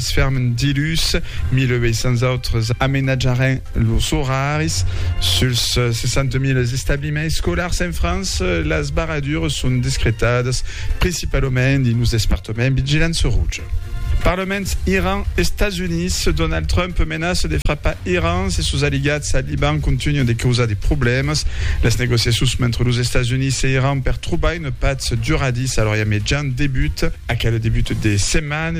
Sfermen dilhus 1800 autres amenatjaràn los oraris suls 60.000 establiments escolars en França. Las barradures son discretadas principalament dins los despartaments vigilança roja. Parlaments Iran, Estats Units, Donald Trump menaça de frapar Iran se sos aliats al Liban contunhan de causar de problèmas. Las negociacions mentre los Estats Units e Iran per trobar una patz duradissa a l'Orient Mejan debutan. Aquel debut de setmana,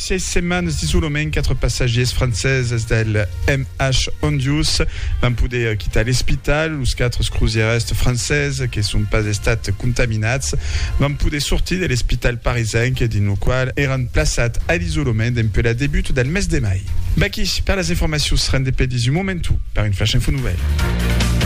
Sièis setmanes d'isolament, quatre passatgiers franceses del MH Hondius van poder quitar l'espital. Los quatre crosièrist franceses que son pas estats contaminats van poder sortir de l'espital parisenc dins lo qual èran plaçats a l'isolament dempuèi la debut del mes de mai. Vaqui per las informacions rendepedis un momentu per un flash info nouvèl.